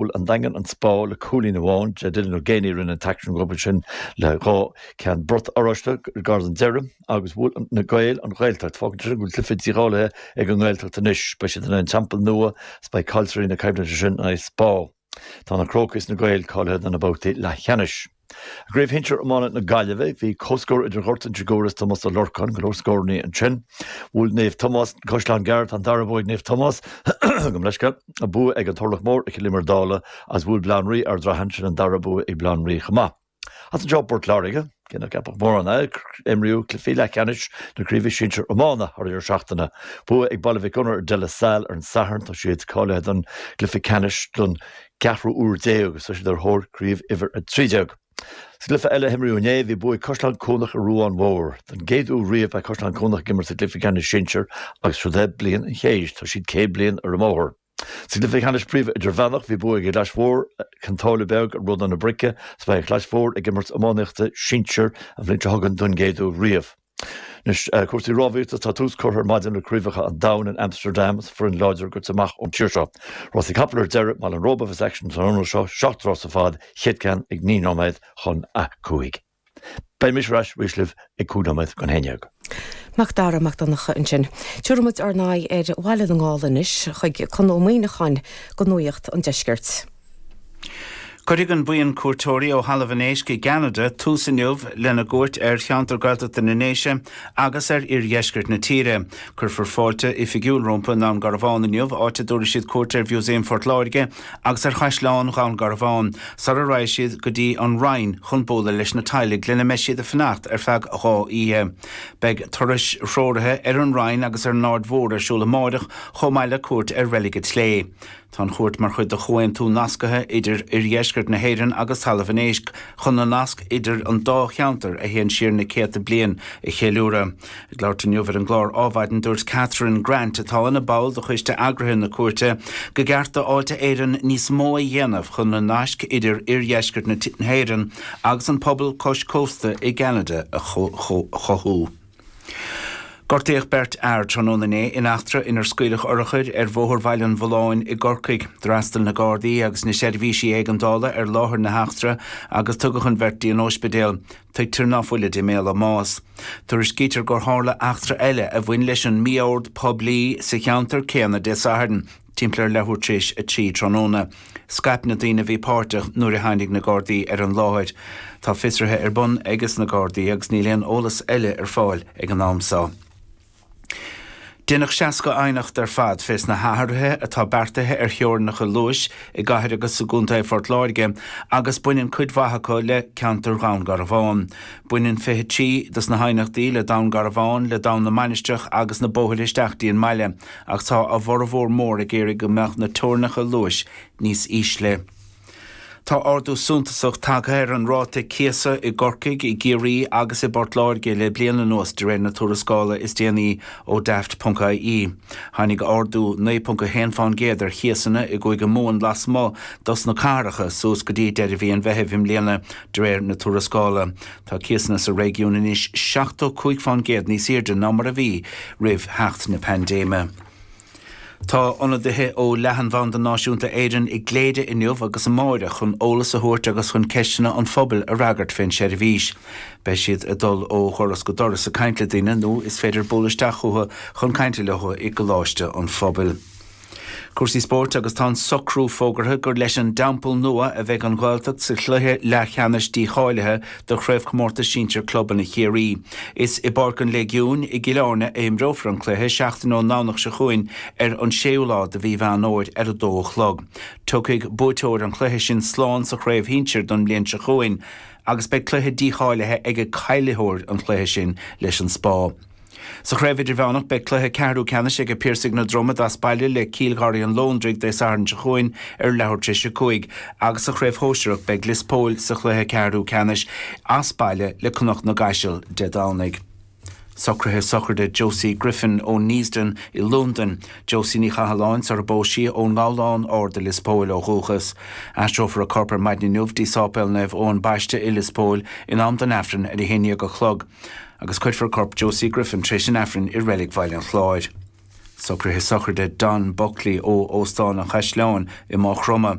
Bhuail an Daingean an Spá le cúilín amháin. Dylan Ó Géibheannaigh a rinne an t-aicsean dóibh ansin le dhá cheann brat oráiste gar don deireadh agus bhuail na Gaeil an Ghaeltacht. Fágann sin go bhfuil cluiche dícháilithe ag an nGaeltacht anois. Beidh siad in aghaidh an Teampaill Nua agus beidh caillteoirí na coimhlinte sin in aghaidh Spá. Tá na Crócaigh is na Gaeil cáilithe do na babhtaí leathcheannais. I gCraobh Shinsir Iomána na Gaillimhe, bhí comhscór idir Ghort Inse Guaire is Tomás Ó Lorcáin, go leor scórannaí ansin. Bhuail Naomh Tomás Caisleán Gearr, Tá an dara bua ag Naomh Tomás, gabhaim leithscéal, bua ag an Turlach Mór ar Chill Íomair Dálaigh agus bhuail Baile Átha an Rí Ardrathain, sin an dara bua ag Baile Átha an Rí chomh maith. As anseo Port Láirge, cé nach gceapfadh mórán é, imríodh cluichí leathcheannais na Craoibhe Sinsir Iomána thar deireadh seachtaine. Bua ag Baile Mhic Gonair ar De La Salle ar an Satharn, tá siad cáilithe don gcluiche ceannais don gceathrú uair déag agus tá siad ar thóir Craobh Uimhir 13. Sa gcluiche eile a himríodh inné, bhí bua ag Caisleán Cuanach ar Ruán Mór. Don gcéad uair riamh beidh Caisleán Cuanach ag imirt sa gcluiche ceannais sinsir agus seo'd é bliain an chéid, tá siad céad bliain ar an mbóthar. Sa gcluiche ceannais príomh-idirmheánach, bhí bua ag Clais Mhór, Cionn tSáile Beag ar Ródaithe na Brice agus beidh Clais Mhór ag imirt iománaíochta sinsir an bhliain seo chugainn don gcéad uair riamh. Anois, cúrsaí rámhaíochta, tá tús curtha ar maidin le Craobhacha an Domhain in Amsterdam agus foireann láidir gaibhte amach ón tír seo. Rásaí capall ar deireadh, i mBaile an Róba a bheas aicsean san iarnóin seo, seacht rás ar fad, chéad ceann ag naoi nóiméad chun a cúig. Beidh mise ar ais arís libh ag cúig nóiméad chun a haon déag. Macdara Mac Donncha ansin. Tiúrfaidh muid ár n-aghaidh ar Bhaile na nGall anois, chuig Conn Ó Muíneacháin go Nuaíocht an Deiscirt. Cuirfidh an buíon cuairteoirí ó Thalamh an Éisc i gCeanada tús inniu lena gcuairt ar cheantar Gaeltachta na nDéise agus ar oirdheisceart na tíre. Cuirfear fáilte oifigiúil rompu i nDún Garbhán inniu, áit a dtabharfaidh siad cuairt ar Mhúsaem Phort Láirge agus ar Chaisleán Dhún Garbhán, sara raghaidh siad go dtí An Rinn chun bualadh leis na teaghlaigh lena mbeidh siad ag fanacht ar feadh dhá oíche. Beidh turais threoraithe ar An Rinn agus ar an Aird Mhór ar siúl amárach, chomh maith le cuairt ar Reilig an tSlé'. Tá an chuairt mar chuid de chomhaontú nasctha idir Oirdheisceart na hÉireann agus Talamh an Éisc chun na nasc idir an dá cheantar a théann siar na céadta bliain a cheiliúradh. Ag labhairt inniu ar an gclár Ádhmhaidin, dúirt Catherine Grant, atá ina ball de choiste eagraithe na cuairte, go gceart do Fháilte Éireann níos mó a dhéanamh chun na naisc idir Oirdheisceart na hÉireann agus an pobal cois cósta i gCeanada a chothú. Gortaíodh beirt fhear tráthnóna inné in eachtra inar scaoileadh urchair ar Bhóthar Bhaile an Mhulláin i gCorcaigh. D'fhreastail na Gardaí agus na seirbhísí éigeandála ar láthair na heachtra agus tugadh an bheirt dtí an ospidéal. Tuigtear ná fuilid i mbaol a mbáis. Tuairiscítear gur tharla eachtra eile a bhain leis an mí-ord poiblí sa cheantar céanna Dé Sathairn. Timpeall ar leathuair tar éis a trí tráthnóna, scaip na daoine a bhí páirteach nuair a tháinig na Gardaí ar an láthair. Tá fiosruithe ar bun aiges na Gardaí agus níl aon eolas eile ar fáil ag an am seo. Deineadh 60 aighneacht ar fad fés na hathruithe atá beartaithe ar theorainneacha luais i gCathair agus i gContae Phort Láirge agus baineann cuid mhaith acu le ceantar Dhún Garbhán. Baineann 23 dos na haighneachtaí le Dún Garbhán, le Dún na Mainistreach agus na bóthair isteach dtí an mbaile. Ach tá a bhformhór mór ag iarraidh go mbeadh na teorainneacha luais níos ísle. Tá ardú suntasach tagtha ar an ráta cíosa i gCorcaigh, i gCiarraí agus i bPort Láirge le bliain anuas, de réir na tuarascála is déanaí ó Daft.ie. Tháinig ardú 9.1 fán gcéad ar chíosanna i gCúige Mumhan lasmuigh dos na cathracha suas go dtí deireadh mhí an Mheithimh i mbliana, de réir na tuarascála. Tá cíosanna sa réigiún anois seachtó cúig fán gcéad níos airde ná mar a bhí roimh theacht na paindéime. Tá ionadaithe ó Leathanbhanda Náisiúnta Éireann i gCléire inniu agus amáireach chun eolas a thabhairt agus chun ceisteanna an phobail a fhreagairt fén seirbhís. Beidh siad ag dul ó dhoras go doras ag caint le daoine nó is féidir bualadh isteach chucu chun cainte leothu i gColáiste an Phobail. Cúrsaí spóirt agus tá an socrú fógartha gur leis an dTeampall Nua a bheidh an Ghaeltacht sa chluiche leathcheannais dícháilithe do Chraobhchomórtas Sinsear Clubanna Chiarraí. Is i bPáirc an Léigiúin i gCill Airne a imreofar an cluiche, seachtain ón nDomhnach seo chugainn ar an séú lá de mhí Mheán Fhómhair ar a 2 a chlog. Tiocfaidh buaiteoir an chluiche sin slán sa chraobh shinsir don bhliain seo chugainn agus beidh cluiche dícháilithe aige caillitheoir an chluiche sin leis an Spá. Sa Chraobh Idirmheánach, beidh cluiche ceathrú ceannais aige Piarsaigh na Dromoda as baile le Cill Gharraí an Londraigh Dé Sathairn seo chugainn ar leathuair tar éis a cúig agus sa Chraobh Shóisearach, beidh Lios Póil sa chluiche ceathrú ceannais as baile le Cnoc na gCaiseal Dé Domhnaigh. Socruithe sochraide Josie Griffin ó Neasden i Lúndain, Josie Ní Chathalláin, Sara Bósie ón nGabhlán Ard i Lios Póil ó dhúchas. Aistreofar a corp ar maidin inniu dtí Sáipéal Naomh Eoin Baiste i Lios Póil in am don Aifreann ar a haon dhéag a chlog. agus cuirfear corp Josie Griffin tar éis an Aifrinn i Reilig Bhaile an Chláir. Socruithe sochraide Don Buckley ó Óstán an Chaisleáin i Maigh Chromtha.